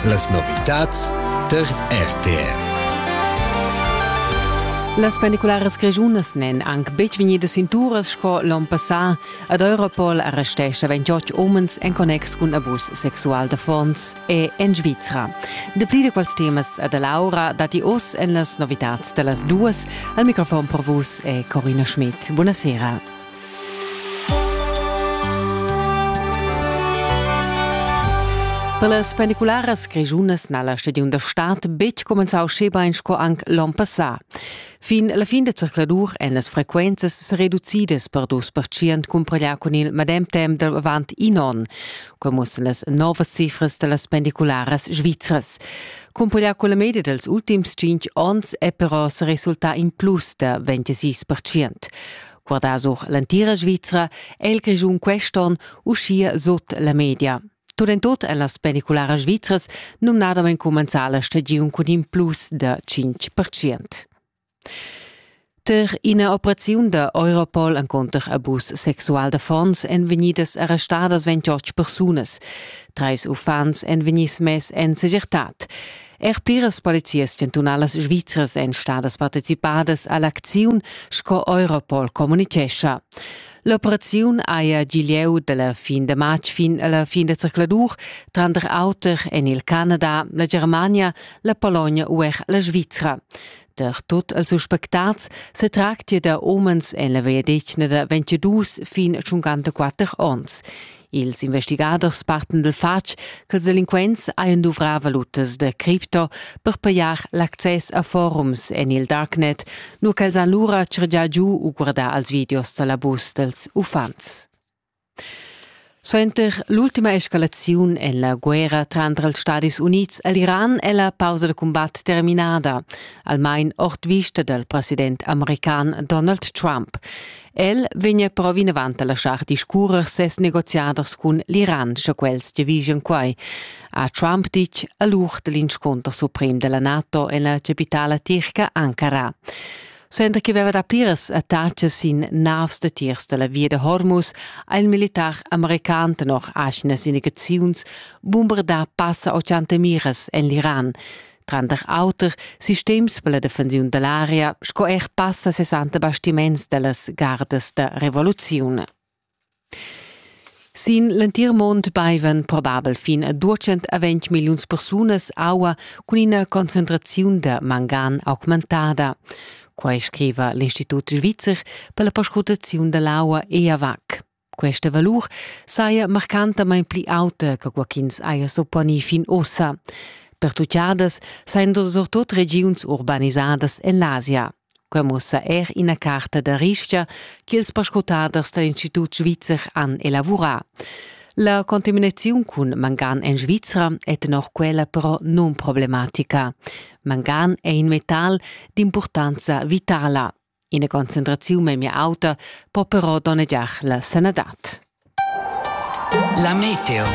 Las novitads tar RTR. Las pendicularas grischunas n'èn anc betg vegnidas sin turas sco l'onn passà. Ad Europol arrestescha 28 umens en connex cun abus sexual d'affons e en Svizra. Dapli da quels temas a da Laura datti oz en las novitads da las duas. Al microfon per vus è Corina Schmidt. Buonasera. Per las pendicularas grischunas n'ha la stagiun da stad betg cumenzau schebein sco anc l'onn passà. Fin la fin da circladur èn las frequenzas sa reducidas per dus percient cumpareglià cun il medem temp da avant in onn. Quai mussen las novas cifras da las pendicularas svizras. Cumpareglià cun la media dals ultims tschintg onns è però sa resultà in plus da 26 percient. guardà sur l'entira Svizra è il Grischun quest'onn uschia sut la media. Tut en tut è las penicularas svizras numnadamain cumenzà la stagiun cun in plus da 5%. Tar ina operaziun da Europol encunter abus sexual d'affons èn vegnidas arrestadas 28 persunas. Trais uffants èn vegnids mess en segirtad. Er pliras polizias chantunalas svizras èn stadas participadas a l'acziun, sco Europol communitgescha. L'operaziun haja gi lieu da la fin da matg fin a la fin da zercladur, tranter auter en il Canada, la Germania, la Pologna u er la Svizra. Per tot els suspectats se tractia da omens en la veia detgna da 22 fin 54 onns. Ils investigaders partan dal fatg ch'ils delinquents hajan duvrà valutas da cripto per pajar l'access a forums en il darknet, nur ch'els han lura chargià giu u guardà als videos da l'abus dals uffants. Suenter l'ultima escalaziun en la guerra tranter els Stadis Unids e l'Iran è la pausa da cumbat terminada, almain ord vista dal president american Donald Trump. El vegna però vinavant a laschar discurrer ses negoziaders cun l'Iran, sche quels giavischan quai, ha Trump ditg a l'ur da l'inscunter suprem della NATO en la capitala tirca Ankara. Suenter che veva da pliras attacas sin navs da tiers dalla via da Hormuz ha il militar american tenor aschina sinaziuns bumbardà passa 80 miras en l'Iran. tranter auter sistems per la defensiun dell'aria sco er passa 60 bastiments dellas gardas da revoluziun. Sin l'entir mond baivan probabel fin a 220 milliuns persunas aua cun ina concentraziun da mangan augmentada. Quai scriva l'Institut svizzer per la perscrutaziun dell'aua EAVAC. Questa valur saja marcantamain pli auta che quai ch'ins haja supponì fin ussa. Pertuchadas sajan surtut regiuns urbanisadas en l'Asia. Quai mussa er ina carta da ristga ch'ils perscrutaders da l'Institut svizzer han elavurà. La contaminaziun cun mangan en Svizra è tenor quella però nunproblematica. Mangan è in metal d'impurtanza vitala. Ina concentraziun memia auta po però donnegiar la sanadad. La meteo.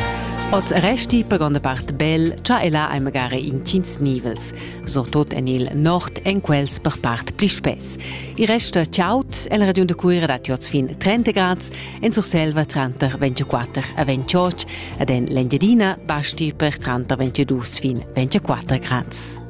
Oz resti per gronda part bel, cha e là hai magari intgins nivels, surtut en il nord en quels per part pli spess. Il resta chaud en la regiun da Cuira datti oz fin 30 grads, en Surselva tranter 24 e 28 ed en l'Engiadina basti per tranter 22 fin 24 grads.